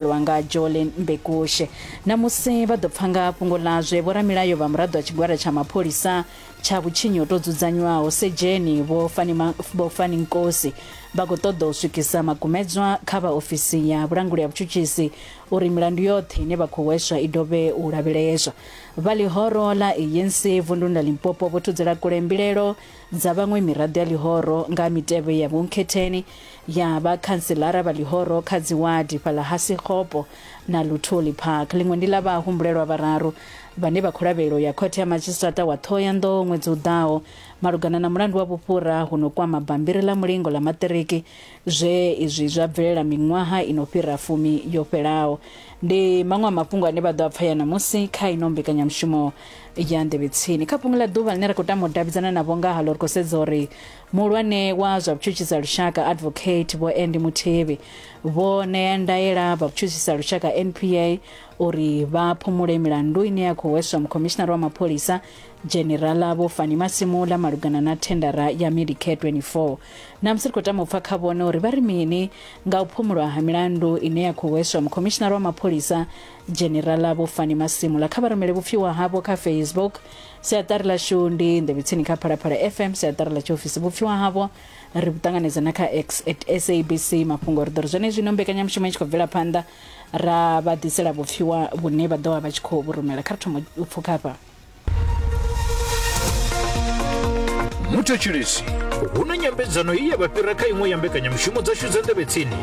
lwa nga Jolly Mbekushe. Ṋamusi vha ḓo pfa nga fhungo ḽazwe vhoramilayo vha muraḓo wa tshigwada tsha mapholisa tsha vhutshinyi ho tou dzudzanywaho Sedzheni Vho Fani Vho Fani Nkosi vha khou ṱoḓa u swikisa makumedzwa kha vha ofisi ya vhulanguli ha vhutshutshisi uri milandu yoṱhe ine vha khou hweswa i dovhe u lavheleswa. Vha ḽihoro ḽa ANC vunduni ḽa Limpopo vho thudzela kule mbilaelo dza vhaṅwe miraḓo ya ḽihoro nga ha mitevhe ya vhunkhetheni ya vha khantselara vha ḽihoro kha dziwadi fhaḽa ha Sekgopo na Luthuli Park. Ḽiṅwe ndi ḽa vhahumbulelwa vhararu vhane vha khou lavhelelwa u ya khothe ya madzhisiṱiraṱa wa Ṱhohoyanḓou ṅwedzi u ḓaho malugana na mulandu wa vhufhura hu no kwama bammbiri ḽa mulingo ḽa maṱiriki zwe izwi zwa bvelela miṅwaha i no fhira fumi yo fhelaho. Ndi maṅwe a mafhungo ane vha ḓo a pfaya ṋamusi kha ino mbekanyamushumo ya Nḓevhetsini. Kha fhungo ḽa ḓuvha ḽine ra khou tama u davhidzana navho ngahaḽo ri khou sedza uri Muhulwane wa zwa vhutshutshisa lushaka Advocate Vho Andy Muthibi vho ṋea ndaela vha vhutshutshisa lushaka NPA uri vha phumule milandu ine ya khou hweswa mukhomishinara wa mapholisa Dzhenerala Vho Fani Masimula malugana na thendara ya Medicare 24. Namusi ri khou tama u pfa kha vhone uri vha ri mini nga u phumulwa ha milandu ine ya khou hweswa mukhomishinara wa mapholisa Dzhenerala Vho Fani Masimula. Kha vha rumele vhupfiwa havho kha Facebook Siaṱari ḽashu ndi nḓevhetsini kha phalaphala fm siaṱari ḽa tshiofisi vhupfiwa havho ri vhu ṱanganedza na kha x at sabc mafhungo ri ḓo ri zwenezwino mbekanyamushumo i tshi khou bvela phanḓa ra vha ḓisela vhupfiwa vhune vha ḓo vha vha tshi khou vhu rumela kha ri thoma u pfukha hafha muthetshelesi hu na nyambedzano ye ya vha fhira kha iṅwe ya mbekanyamushumo dzashu dza nḓevhetsini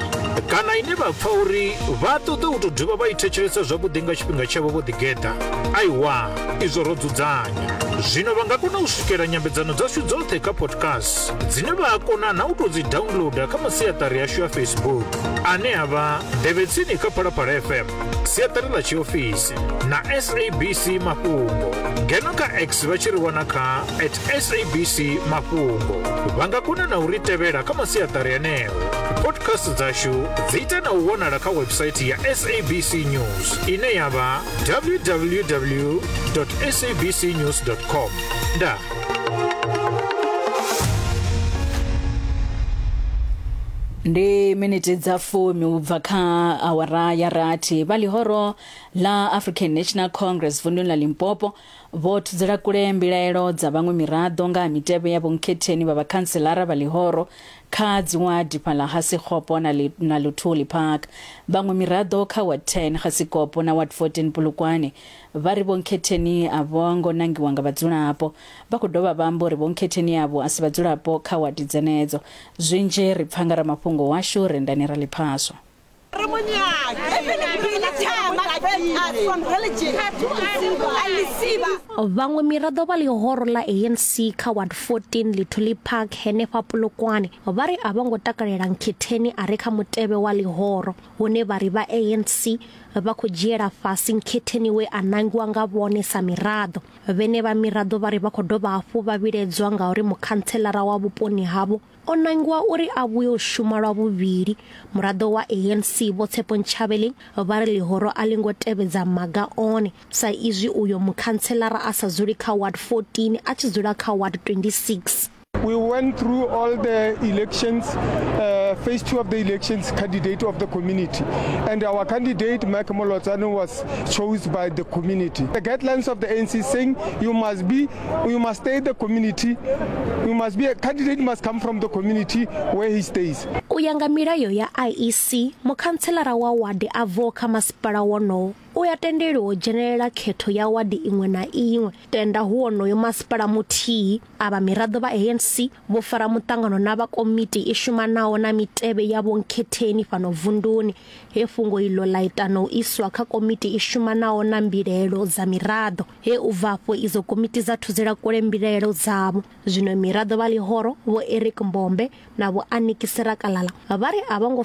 kana ine vha pfa uri vha ṱoḓa u tou dovha vha i thetshelesa zwavhuḓi nga tshifhinga tshavho vho ḓigeḓa aiwa izwo ro dzudzanya zwino vha nga kona u swikela nyambedzano dzashu dzoṱhe kha podcast dzine vha a kona na u tou dzi downloada kha masiaṱari yashu ya facebook ane a vha nḓevhetsini kha phalaphala fm siaṱari ḽa tshiofisi na sabc mafhungo ngeno kha x vha tshi ri wana kha at sabc mafhungo vha nga kona na u ri tevhela kha masiaṱari aneo podcast dzashu dzi ita na u wanala kha website ya sabc news ine ya vha www sabc news com ndaa ndi miniti dza fumi u bva kha awara ya rathi vha ḽihoro ḽa african national congress vunḓuni ḽa limpopo Vho thudzela kule mbilaelo dza vhaṅwe miraḓo nga ha mitevhe ya vhonkhetheni vha vhakhantselara vha ḽihoro kha dziwadi fhaḽa Hasikgopo na, li, na Luthuli Park. Vhaṅwe miraḓo kha Ward 10 Hasikgopo na Ward 14 Polokwane vha ri vhonkhetheni a vho ngo nangiwa nga vhadzulapo. Vha khou dovha vha amba uri vhonkhetheni avho a si vhadzulapo kha wadi dzenedzo. Zwinzhi ri pfa nga ramafhungo washu Rendani Raliphaswa. vhaṅwe miraḓo vha ḽihoro ḽa anc kha ward 14 lithuli park henefha polokwane vha ri a vho ngo takalela nkhetheni a re kha mutevhe wa ḽihoro hune vha ri vha anc vha khou dzhiela fhasi nkhetheni we a nangiwa nga vhone sa miraḓo vhene vha miraḓo vha ri vha khou dovha hafhu vha vhiledzwa nga uri mukhantshelara wa vhuponi havho o nangiwa uri a vhuye u shuma lwa vhuvhili muraḓo wa anc vho tshepo ntshavheleng vha ri ḽihoro a ḽi ngo tevhedza maga one sa izwi uyo mukhantshelara a sa dzuli kha ward 14 a tshi dzula kha ward 26 We went through all the elections, uh, phase two of the elections, candidate of the community. And our candidate, Mike Molotsano, was chosen by the community. The guidelines of the ANC saying you must be you must stay the community you must be a candidate must come from the community where he stays u ya nga milayo ya IEC mukhantselara wa wadi a bvaho kha masipala wonowo u ya tendeliwa u dzhenelela khetho ya wadi iṅwe na iṅwe tenda hu wonoyo masipala muthihi a vha miraḓo vha ANC Vho fara muṱangano na vha komiti i shumanaho na mitevhe ya vhonkhetheni fhano vunduni, he fhungo iḽo ḽa ita na u iswa kha komiti i shumanaho na mbilaelo dza miraḓo, he u bva afho idzo komiti dza thuzela kule mbilaelo dzavho. Zwino miraḓo vha ḽihoro, Vho Eric Mbombe na Vho Aniki Sirakalala, vha ri a vho ngo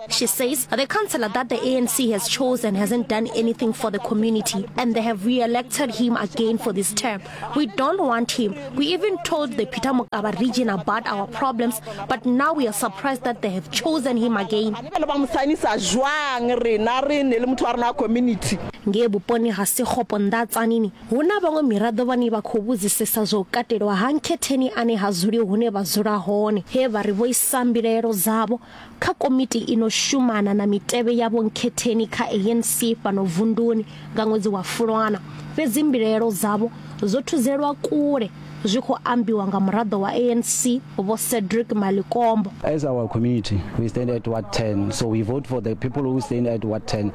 She says the councillor that the ANC has chosen hasn't done anything for the community and they have re-elected him again for this term. We don't want him. We even told the Peter Mokaba region about our problems, but now we are surprised that they have chosen him again. ngee vhuponi ha sekgopo nda tsanini hu na vhaṅwe miraḓo vhane vha khou vhudzisesa zwa u katelwa ha nkhetheni ane ha dzuli hune vha dzula hone he vha ri vho isa mbilaelo dzavho Kha komiti i no shumana na mitevhe ya vhonkhetheni kha ANC fhano vunduni nga ṅwedzi wa Fulwana, fhedzi mbilaelo dzavho dzo thuzelwa kule, zwi khou ambiwa nga muraḓo wa ANC Vho Cedric Malikombo. As our community, we stand at ward 10, so we vote for the people who stand at ward 10.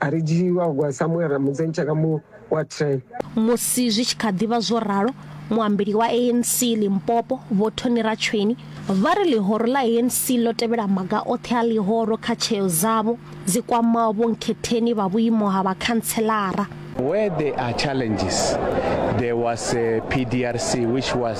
A ri dzhii wa gwa Samuel Ramudzenyi tshaka mu wa train. Musi zwi tshi kha ḓi vha zwo ralo, muambeli wa ANC Limpopo, Vho Tony Ratsweni, vha ri ḽihoro ḽa ANC ḽo tevhela maga oṱhe a ḽihoro kha tsheo dzavho dzi kwamaho vhonkhetheni vha vhuimo ha vhakhantshelara. Where there are challenges, there was a PDRC which was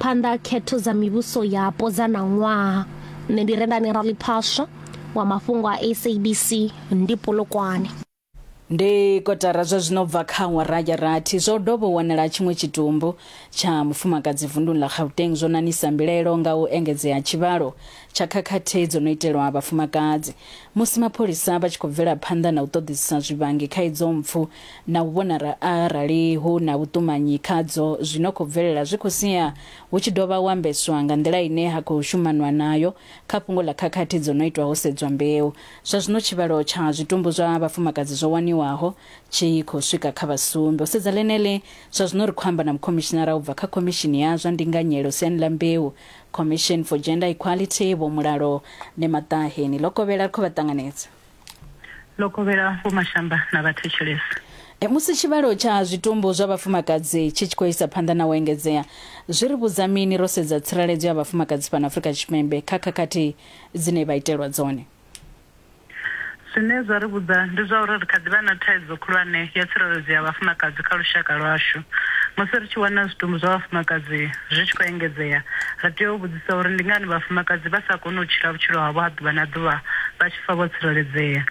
Phanḓa ha khetho dza mivhuso yapo dza ṋaṅwaha, nṋe ndi Rendani Raliphaswa wa mafhungo a SABC ndi Polokwane. Ndi kotara zwa zwino bva kha awara ya rathi zwo dovha wanala tshiṅwe tshitumbu tsha mufumakadzi vunduni ḽa Gauteng zwo nanisa mbilaelo nga u engedzea tshivhalo tsha khakhathi dzo no itelwa vhafumakadzi musi mapholisa vha tshi khou bvela phanḓa na u ṱoḓisisa zwivhangi kha idzo mpfu na u vhona arali hu na vhuṱumanyi khadzo zwi no khou bvelela zwi khou sia hu tshi dovha u ambeswa nga nḓila ine ha khou shumanwa nayo kha fhungo ḽa khakhathi dzo no itwa ho sedzwa mbeu. Zwa zwino tshivhalo tsha zwitumbu zwa vhafumakadzi zwo waniwaho tshi khou swika kha vha sumbe. U sedza ḽeneḽi, zwa zwino ri khou amba na mukhomishinara u bva kha Khomishini ya zwa Ndinganyelo siani ḽa Mbeu, Commission for Gender Equality, Vho Mulalo Nemataheni. Ḽo kovhela ri khou vha ṱanganedza. ḽo kovhela vhomashamba na vhathetshelesi. Musi tshivhalo tsha zwitumbu zwa vhafumakadzi tshi tshi khou isa phanḓa na u engedzea, zwi ri vhudza mini ro sedza tsireledzo ya vhafumakadzi fhano Afrika Tshipembe kha khakhathi dzine vha itelwa dzone? Zwine zwa ri vhudza ndi zwa uri ri kha ḓi vha na thaidzo khulwane ya tsireledzo ya vhafumakadzi kha lushaka lwashu. Musi ri tshi wana zwitumbu zwa vhafumakadzi zwi tshi khou engedzea, ri tea u vhudzisa. Sa uri ndi ngani vhafumakadzi vha sa koni u tshila vhutshilo havho ha ḓuvha na ḓuvha vha tshi pfa vho tsireledzea.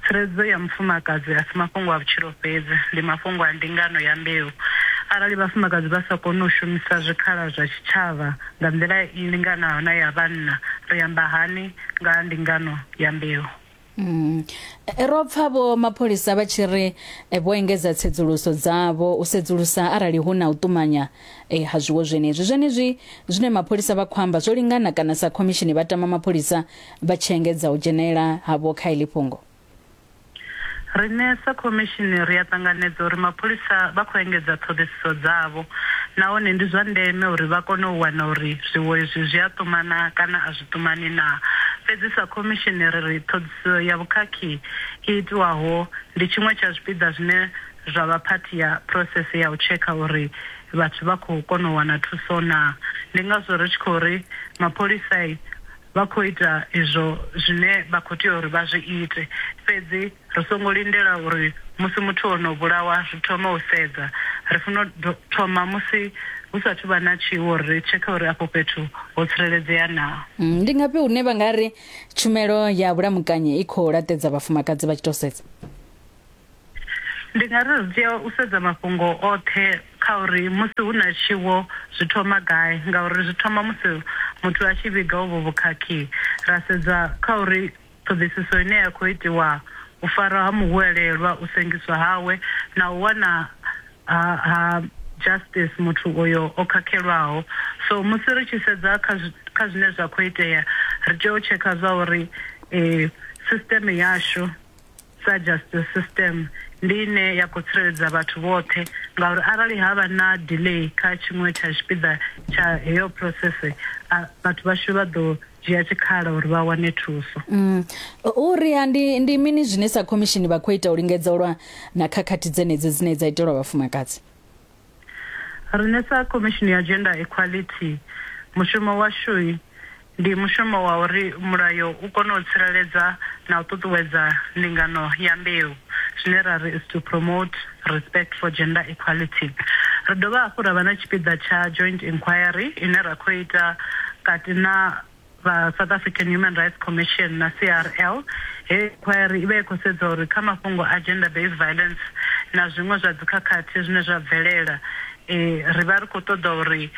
Tsireledzo ya mufumakadzi a si mafhungo a vhutshilo fhedzi, ndi mafhungo a ndingano ya mbeu. Arali vhafumakadzi vha sa koni u shumisa zwikhala zwa tshitshavha nga nḓila i linganaho na ya vhanna, ri amba hani nga ha ndingano ya mbeu? Mm. Ro pfa vho mapholisa vha tshi ri eh, vho engedza tsedzuluso dzavho u sedzulusa arali hu na u ṱumanya eh, ha zwiwo zwenezwi zwenezwi zwine mapholisa vha khou amba zwo lingana kana sa khomishini vha tama mapholisa vha tshi engedza u dzhenela havho kha iḽi fhungo Riṋe sa khomishini ri a ṱanganedza uri mapholisa vha khou engedza ṱhoḓisiso dzavho nahone ndi zwa ndeme uri vha kone u wana uri zwiwo izwi zwi a ṱumana kana a zwi vhuḓumani naa? Fhedzi sa khomishini ri ri ṱhoḓisiso ya vhukhakhi i itwaho ndi tshiṅwe tsha zwipiḓa zwine zwa vha phathi ya phurosese ya u tshekha uri vhathu vha khou kona u wana thuso naa. Ndi ngazwo ri tshi khou ri mapholisai vha khou ita izwo zwine vha khou tea uri vha zwi ite, fhedzi. Ri songo lindela uri musi muthu o no vhulawa ri thome u sedza. Ri funa u thoma musi hu sa athu vha na tshiwo uri ri tshekhe uri afho fhethu ho tsireledzea naa. Ndi ngafhi hune vha nga ri tshumelo ya vhulamukanyi i khou laṱedza vhafumakadzi vha tshi tou sedza? Ndi nga ri ri tea u sedza mafhungo oṱhe kha uri musi hu na tshiwo zwi thoma gai ngauri zwi thoma musi muthu a tshi vhiga uvho vhukhakhi. Ra sedza kha uri Ṱhoḓisiso ine ya khou itiwa, u farwa ha muhwelelwa, u sengiswa hawe na u wana ha ha justice muthu oyo o khakhelwaho. So musi ri tshi sedza kha kha zwine zwa khou itea ri tea u tshekha zwa uri system yashu. sa justice system ndi ine ya khou tsireledza vhathu vhoṱhe ngauri arali ha vha na delay kha tshiṅwe tsha tshipiḓa tsha heyo process vhathu vhashu vha ḓo dzhia tshikhala uri vha wane thuso. Mm. Uri ha ndi ndi mini zwine sa khomishini vha khou ita u lingedza u lwa na khakhathi dzenedzi dzine dza itelwa vhafumakadzi? Riṋe sa Khomishini ya Gender Equality, mushumo washu ndi mushumo wa uri mulayo u kone u tsireledza na u ṱuṱuwedza ndingano ya mbeu, zwine ra ri is to promote respect for gender equality. Ri dovha hafhu ra vha na tshipiḓa tsha Joint Inquiry ine ra khou ita kati na. vha South African Human Rights Commission na CRL, heyi inkhwairi i vha i khou sedza uri kha mafhungo a gender based violence na zwiṅwe zwa dzikhakhathi zwine zwa bvelela, ri vha ri khou ṱoḓa uri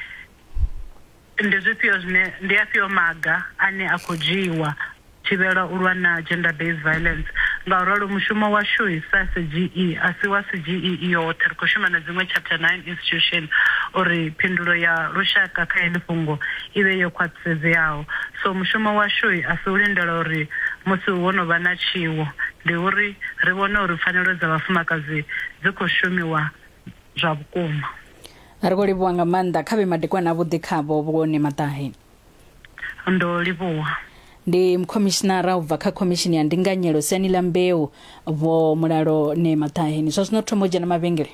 ndi zwifhio zwine, ndi afhio maga ane a khou dzhiiwa u thivhela u lwa na gender based violence. Ngauralo mushumo washu sa SGE a si wa SGE i yoṱhe, ri khou shuma na dziṅwe Chapter Nine Institution uri phindulo ya lushaka kha heḽi fhungo i vhe yo khwaṱhisedzeaho. So mushumo washu a si u lindela uri musi ho no vha na tshiwo, ndi uri ri vhone uri pfanelo dza vhafumakadzi dzi khou shumiwa zwa vhukuma. Ri khou livhuwa nga maanḓa. Kha vhe madekwana avhuḓi khavho, Vhuone Maṱahe. Ndo livhuwa. Ndi mukhomishinara u bva kha Khomishini ya Ndinganyelo siani ḽa Mbeu, Vho Mulalone Maṱahe. Ni zwa zwino thoma u dzhena mavhengele.